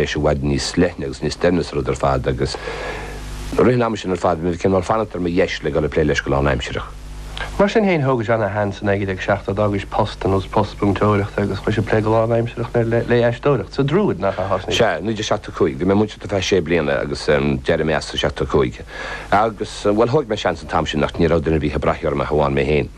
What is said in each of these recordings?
leis i bhfad níos leithne agus níos doimhne sa rud ar fad agus i rith an ama sin ar fad, bhí mé cineál, mar, ag fanacht ar mo dheis le dul ag plé leis go lán-aimsireach. Mar sin féin, thógais do sheans i 1970, d'fhágais post ar nós post múinteoireachta agus chuais ag plé go lán-aimsireach le haisteoireacht. Sa Druid, nach ea? Sea, 1975. Bhí mé ag múineadh ar feadh sé bliana agus d'éirigh mé as i 75. Agus, bhuel, thóg mé seans an t-am sin, ach ní raibh duine ar bith ag braith orm ach amháin mé féin.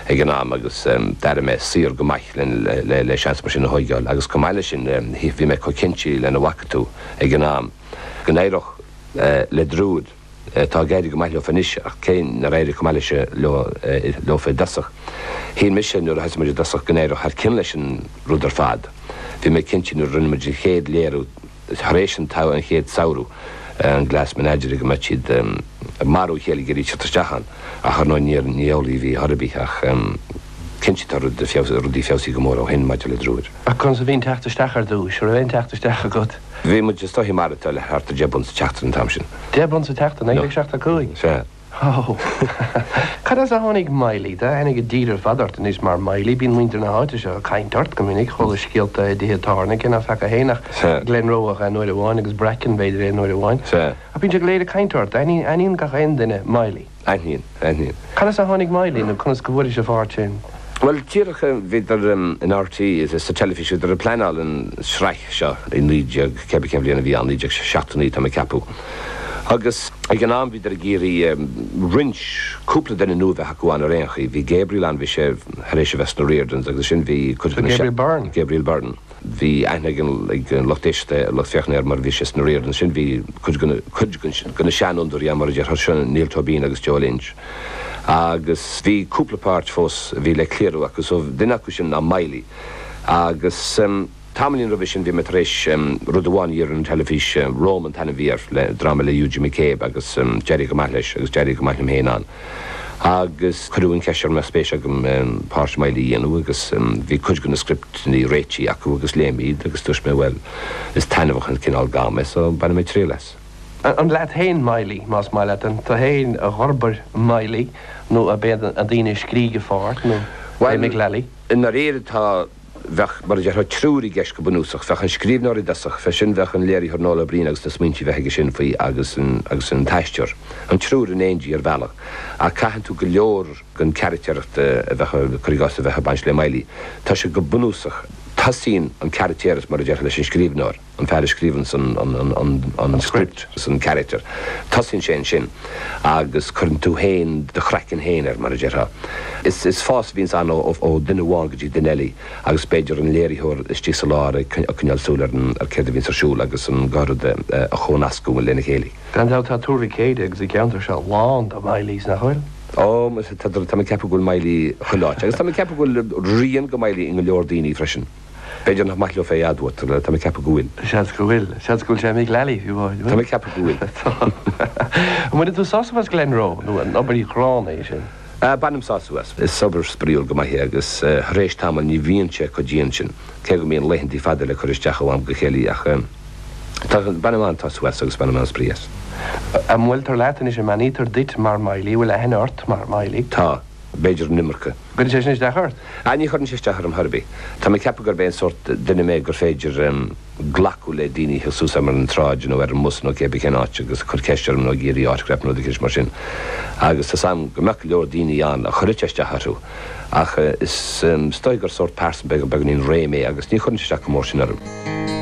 ag an am agus d'airigh mé saor go maith le seans mar sin a thóigeáil agus chomh maith leis sin bhí mé chomh cinnte lena bhfaca tú, ag an am go n-éireodh le Druid, tá ag éirí go maith leofa anois ach cé nár éirigh chomh maith leis leofa i dtosach, shíl mise nuair a thosaigh muid i dtosach go n-éireodh thar cionn leis an rud ar fad, bhí mé cinnte nuair a rinne muid an chéad léiriú. tar éis an tsamh, an chéad samhradh, an Glass Menagerie, go mbeadh siad ag marú a chéile ag iarraidh teacht isteach ann. Ach, ar ndóigh, ní amhlaidh a bhí ar chor ar bith, ach cinnte tá rudaí feabhsaithe go mór ó shin maidir le Druid. Ach conas a bhí an teacht isteach ar dtús? An raibh aon teacht isteach agat? Bhí muid ag streachailt linn le thart ar deich bpunt sa tseachtain an t-am sin. Deich bpunt sa tseachtain? I seachtó cúig? Sea. Ó! Cad as a tháinig Miley? Tá aithne ag an dtír ar fad ort anois mar Miley. Bíonn muintir na háite seo ag caint ort go minic. Chualas scéalta i dtithe tábhairne, cé nach fhaca féin ach Glenroe ach aon uair amháin agus Bracken b'fhéidir aon uair amháin. Ach bíonn siad go léir ag caint ort. Aithníonn gach aon duine Miley. Aithníonn, aithníonn. Cad as a tháinig Miley nó conas go bhfuairis an pháirt sin? Bhuel, díreach, bhíodar in RTÉ, sa teilifís, bhíodar ag pleanáil an tsraith seo i naoi déag, cén, cén bhliain a bhí ann, naoi déag seachtó naoi, tá mé ag ceapadh. Agus ag an am bhíodar ag iarraidh roinnt, cúpla duine nua a bheith acu ann ar aon chaoi. Bhí Gabriel ann, bhí sé tar éis a bheith sna Riordans agus ansin bhí cuid de na, Gabriel Byrne? Gabriel Byrne. Bhí aithne ag an, ag an lucht éisteachta, ar an lucht féachana air mar bhí sé sna Riordans. Ansin bhí cuid de na, cuid de na seanfhondúirí ann mar a déarfá, sin Niall Tóibín agus Joe Lynch. Agus bhí cúpla páirt fós a bhí le líonadh acu. So duine acu sin ná Miley agus. Tamaillín roimhe sin bhí mé tar éis rud amháin a dhéanamh ar an teilifís, Roma an t-ainm a bhí air, dráma le Eugene McCabe agus d'éirigh go maith leis agus d'éirigh go maith liom féin ann. Agus cuireadh an cheist orm an mbeadh spéis agam páirt Miley a dhéanamh agus bhí cuid de na scripteanna réitigh acu agus léigh mé iad agus dúirt mé bhuel is taitneamhach an cineál gamal é so bainfidh mé triail as. An leat, tú féin Miley, más maith leat an tú féin a d'fhorbair Miley nó ab iad na daoine a scrígh an pháirt nó an meascán é? Bhuel, i ndáiríre tá. Bheadh, mar a déarfá, triúr i gceist go bunúsach. Bheadh an scríbhneoir i dtosach, bheadh sin, bheadh an léiritheoir Noel Ó Briain agus na smaointe a bheadh aige sin faoi agus an, agus an t-aisteoir. An triúr in éindí ar bhealach. Ach tagann go leor den charactéireacht a bheadh, cuir i gcás, a bheadh ag baint le Miley. Tá sé go bunúsach, tosaíonn an caractéireacht, mar a déarfá, leis an scríbhneoir. an fear a scríobhann an script, an character, tosaíonn sé ansin agus cuireann tú féin do chraiceann féin air, mar a déarfá. Is fás a bhíonns ann ó dhuine amháin go dtí duine eile agus b'fhéidir an léiritheoir istigh sa lár ag coinneáil súil ar céard a bhíonns ar siúl agus an gá rud a chomhnascadh lena chéile. Gan dabht tá Tuar Mhic Éadaigh agus an ceantar seo lán de Mhileys, nach bhfuil? Ó, tá mé ag ceapadh go bhfuil Miley chuile áit. Agus tá mé ag ceapadh go bhfuil rian de Miley i go leor daoine freisin. B'fhéidir nach maith leo é a admháil, tá mé ag ceapadh go bhfuil. Seans go bhfuil. Seans go bhfuil sé i Mick Lally faoi láthair, an bhfuil? Tá mé ag ceapadh go bhfuil. Tá. An bhfaigheann tú sásamh as Glenroe, nó an obair chrua é sin? Bainim sásamh as. Is obair spraíúil go maith é agus thar éis tamaill ní bhíonn sé chomh dian sin, cé go mbíonn laethanta fada le cur isteach ó am go chéile, ach tá, bainim an-sásamh as agus bainim an-spraoi as. An mbuailtear leat anois, an mbeannaítear duit mar Miley, an bhfuil aithne ort mar Miley? Tá. B'fhéidir an iomarca. Cuireann sé sin isteach ort? Ah, ní chuireann sé isteach orm chor ar bith. Tá mé ag ceapadh gurb é an sórt duine mé gur féidir glacadh le daoine a thig suas orm ar an tsráid nó ar an mbus nó céard ar cén áit agus ag cur ceist orm nó ag iarraidh autograph nó rud eicint mar sin. Agus tá's a'm go mbeadh go leor daoine ann a chuirfeadh sé isteach orthu ach is dóigh gur sórt pearsa beagáinín réidh mé agus ní chuireann sé isteach go mór sin orm.